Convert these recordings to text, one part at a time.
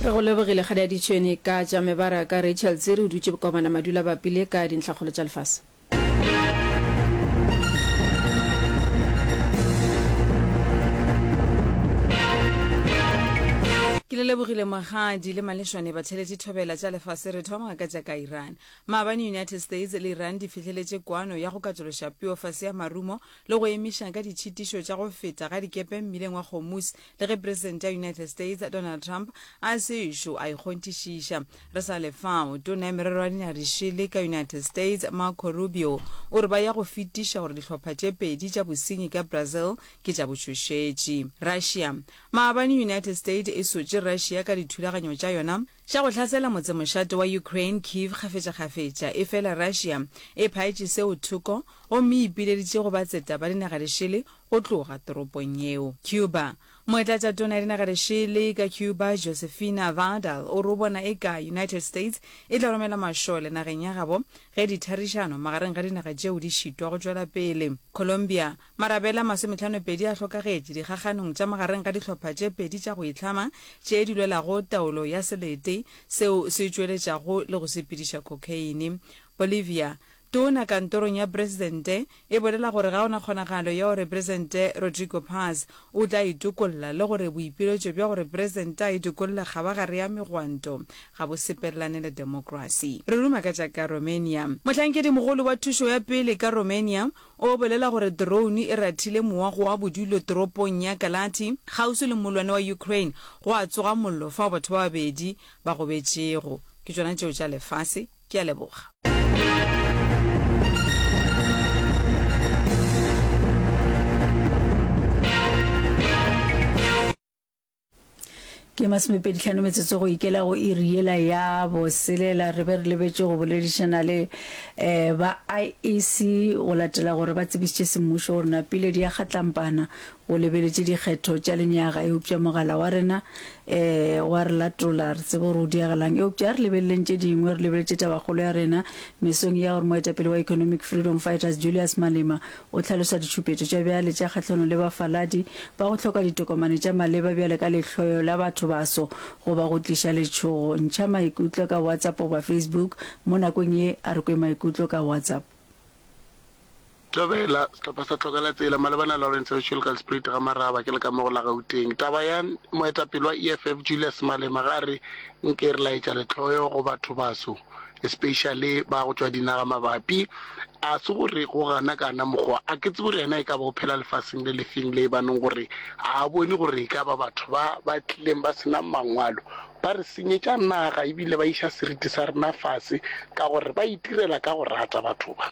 Re go lebogile Kgadi Aditšhweni ka tša mebaraka. Rachel Tsiri o dutše Bokobana Madula Bapile ka dintlhakgolo tša lefase. Ke le lebogile Magadi le Malešwane Batheletši Thobela tša lefase Re thoma ka tša ka Iran. Maabane United States le Iran di fihleletše kwano ya go katološa peo fase ya marumo le go emiša ka ditšhitišo tša go feta ga dikepe mmileng wa Hormuz Le ge Presidente ya United States, Donald Trump, a se ešo a e kgonthišiša, re sa le fao, Tona ya Merero ya Dinyaga-di-Šele ka United States, Marco Rubio, o re ba ya go fetiša gore dihlopha tše pedi tša bosenyi ka Brazil ke tša botšhošetši. Russia. Maabane United States e sotše Russia ka dithulaganyo tša yona. Tša go hlasela motsemošate wa Ukraine, Kyiv, kgafetšakgafetša, efela Russia e phaetše seo thoko gomme e ipileditše go batseta ba dinagalešele go tloga toropong yeo. Cuba. Moetlatšatona ya dinagalešele ka Cuba, Josefina Vardal, o re o bona eka United States e tla romela mašole nageng ya gabo ge ditharišano magareng ga dinaga tšeo di šitwa go tšwela pele. Colombia. Marabela a masometlhanopedi a hlokagetše dikgakganong tša magareng ga dihlopha tše pedi tša go itlhama tše di lwelago taolo ya selete seo se tšweletšago le go sepediša khokheine. Bolivia, Tona kantorong ya Presidente e bolela gore ga go na kgonagalo ya gore Presidente Rodrigo Paz o tla itokolla le gore boipiletšo bja gore Presidente a itokolle kgabagare ya megwanto ga bo sepelelane le demokrasi. Re ruma ka tša ka Romania. Mohlankedi mogolo wa thušo ya pele ka Romania O bolela gore drone e rathile mowa go wa bodulo toropong ya Kalati, kgauswi le mollwane wa Ukraine, gwa tsoga mollo fao batho ba babedi ba gobetšego. Ke tšona tšeo tša lefase. Ke a leboga. Ke masomepedi tlhano metsotso go ikela go iri yela ya boselela re be re lebetše go boledišana le um ba IEC go latela gore ba tsebišitše semmušo gore na piledi ya kgatlampana go lebeletše dikgetho tša lenyaga eupša mogala wa rena um wa re latola re tsebe gore o diagelang eupša re lebeleleng tše dingwe re lebeletše tabakgolo ya rena mesong ya gore moetapele wa economic freedom fighters Julius Malema O hlalosa ditšhupetšo tša bjale tša kgahlanong le bafaladi ba go hloka ditokomane tša maleba bjale ka lehloyo la bathobaso goba go tliša letšhogo. Ntšha maikutlo ka WhatsApp goba Facebook mo nakong ye a re kwe maikutlo ka WhatsApp. Thobela, Sehlopha sa Tlogela Tsela malebana Lawrence Usual Kalsprite ga Maraba ke le ka mo go la Gauteng. Taba ya moetapele wa EFF Julius Malema ge a re nke re laetša lehloyo go bathobaso. especially ba go tšwa dinaga mabapi a se gore go gana kana mokgwa a ke tse gore yena e ka ba o phela lefaseng le lefeng le ba neng gore a bone gore e ka ba batho ba ba tlileng ba senang mangwalo ba re senyetša naga ebile ba iša seriti sa rena fase ka gore ba itirela ka go rata batho ba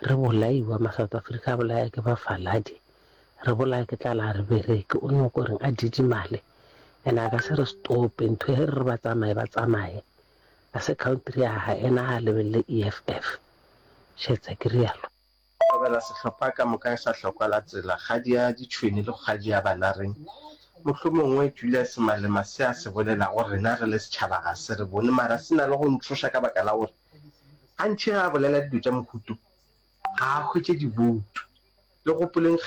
Re bolaiwa, ma-South Africa a bolaya ke bafaladi, re bolaya ke tlala a re bereke, o nyoko reng? A didimale ena a ka se re stope, ntho he re re ba tsamaye ba tsamaye, a se country ya hae ena a lebelele EFF, šetsa ke rialo. Thobela sehlopha ka moka sa hlokwa la tsela, kgadi ya ditšhwene le kgadi ya bana reng? Mohlomongwe Julius Malema se a se bolelago rena re le setšhaba ga se re bone mara se na le go ntšhoša ka baka la gore A ntšhega a bolela dilo tša mohuto, ga a hwetše diboutu. Le gopoleng kgetho ya.